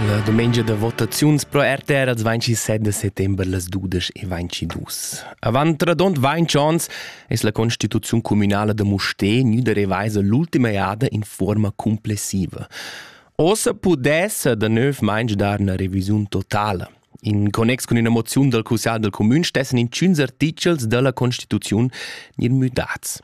La dumengia da votaziuns pro RTR als vainci 7 de settember las dudesch e vainci dus. Avant radont vainci ons es la constituziun communala da Musté gnüda revaisa l'ultima eada in forma complessiva. Ossa pudessa da növ mainge dar una revisiun totala. In connex con una moziun dal Cussal del Comün stessen intschüns artichels dalla Constituziun nir müdats.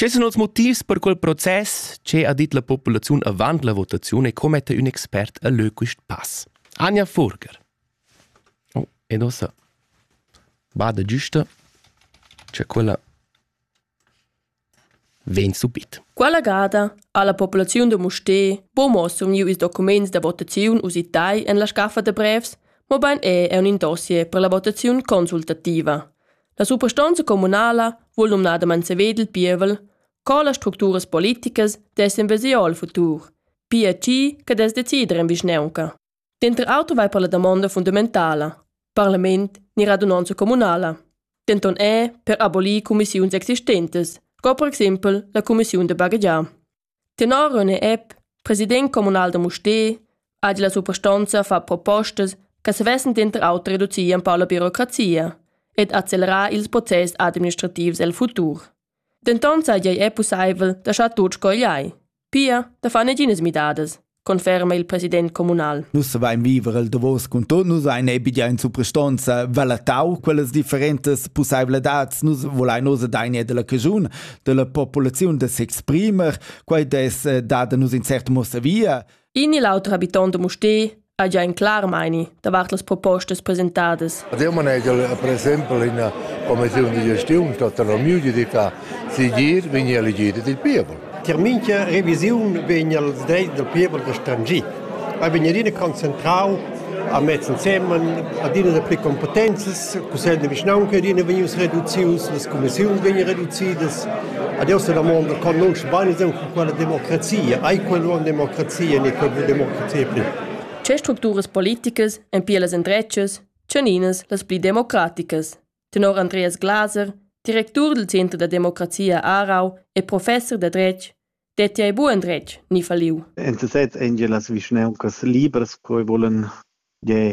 Che sun els motivs per quel process, che ha dit la populaziun avant la votaziun e commetta ün expert a lö quist pass? Anja Furger. Oh, ed ossa bada giusta cha quella vegn subit. Quella gada ha la populaziun da Musté bo mo surmiu ils documents da votaziun usitai en la scaffa da brevs, mobein è è un in dossier per la votaziun consultativa. La suprastonza communala vul numnadamain saved il pievel co las structuras politicas dessen vesir al futur, pia chi che des decider in vischneunca. Denter auter vai per la damonda fundamentala, parlament ni radunanza communala. Denton è per abolir cumissiuns existentes, co per exempel la cumissiun de baghegiar. Tenor René Epp, president communal da Mustér, hagi la suprastonza far propostas che savessen denter auter reducir empau la birocrazia ed accelerar ils process administrativs el futur. Denton seigi ei pusseivel da schar tut scogliai, pia da far neginas midadas. conferma il president communal. Nus savein viver el davos cun tot, nus ein ebia in suprastonza valatau quellas differentas pusseivladads, nus volein oz daine della cagiun, della populaziun da s'exprimer, quei des eh, dada nus in cert mossa via. In il auter habitant de Musté ha già in clar meini davart las propostas presentadas. Eu manegel per exempel in commissione di gestione tota la mia ditta sigir vegni elegida dil pievel. Tier mincha revisiun vegn els drets del pievel gestangit. A vegn adina concentrau a mezz ensemen, adina de pli competenzas, cussegl de vischnaunca adina vegnius reducius, las commissiuns vegnan reducidas. Adesso la mondo conosce bene con quella democrazia, ai quello una democrazia, ne quella democrazia più. Tge structuras politicas èn pia las endretgas, tgeninas las pli democraticas? Tenor Andreas Glaser, directur dal Center da democrazia a Aarau e professor da dretg, detti ei buc endretg ni falliu. En sesez ein gia las vischneuncas libras che volen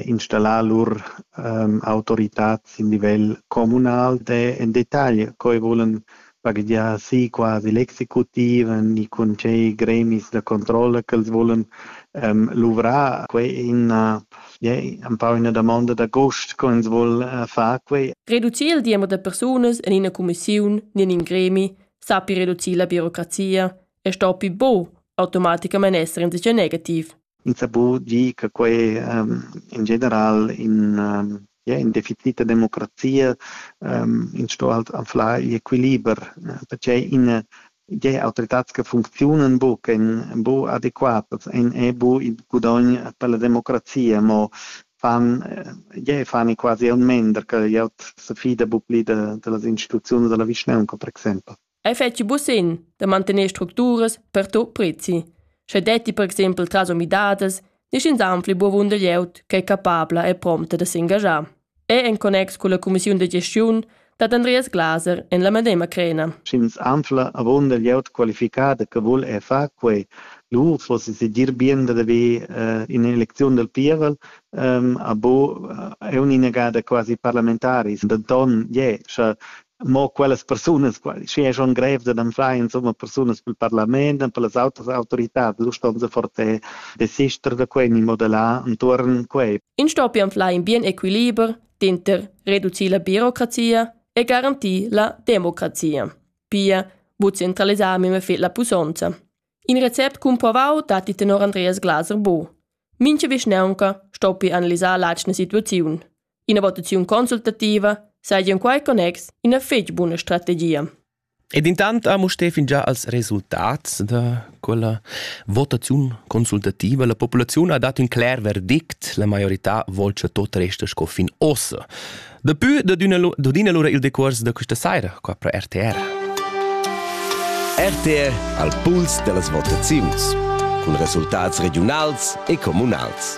installar lur um, autoritad sin livel communal de en detagl, che volen baghegiar si quasi l'executiv ni cun tschei gremis da controlla ch'els volen ähm, luvrar. Quei è ina, yeah, un po' una domanda d'agost che ens vuol äh, far quei. Reducir il diember de persunas in una commissione ni in un gremi sappi reducir la burocrazia e sto più bo automaticamente essere in negativ. In sabu di che quei um, in general in um, ja, in definita democrazia ähm, in sto halt anflar il equiliber perché in die autoritats che funzionen bu che bu adequatas en e bu il gudogn per la democrazia mo fan je fan quasi un mender che ja se fida bu pli de, de las instituzioni della vischnaunca per exempel Ei fetschi busin da mantener structuras per tot prezi, sche detti per exempel tras umidadas nigin anfli buvunder glieud ch'ei capabla e promta da s'engaschar. E en connex culla cumissiun da gestiun dat Andreas Glaser en la medema crena. Sch'ins anfla avunda glieud qualificada che vul er far quei, lur fo si dir bien da haver eh, in eleziun del pievel, ehm, a bo eh, è un'inagada quasi parlamentaris, da don je, sche mo quellas persunas, schi è schon grev da anflar insomma persunas pel parlament und per las autas autorità, du ston se for te desister da quei ni modelar intorn quei. In sto pi anflar in bien equiliber dinter reducir la birocrazia e garantir la democrazia. Pia, bu centralisar meme fet la pusonza. In recept cumprovau datti tenor Andreas Glaser bo. Mince vischneunca stoppi analisar l'atschna situaziun. Ina votaziun consultativa saja in quai connex ina fetg buna strategia. Ed intant ha Mustè fin già als resultats da quella votaziun consultativa. La populaziun ha dat un cler verdict, la maiorità vuol che tot resta sco fin ossa. Dapü dodina lura il decurs da questa saira qua pro RTR. RTR al puls dellas votaziuns cun resultats regionals e comunals.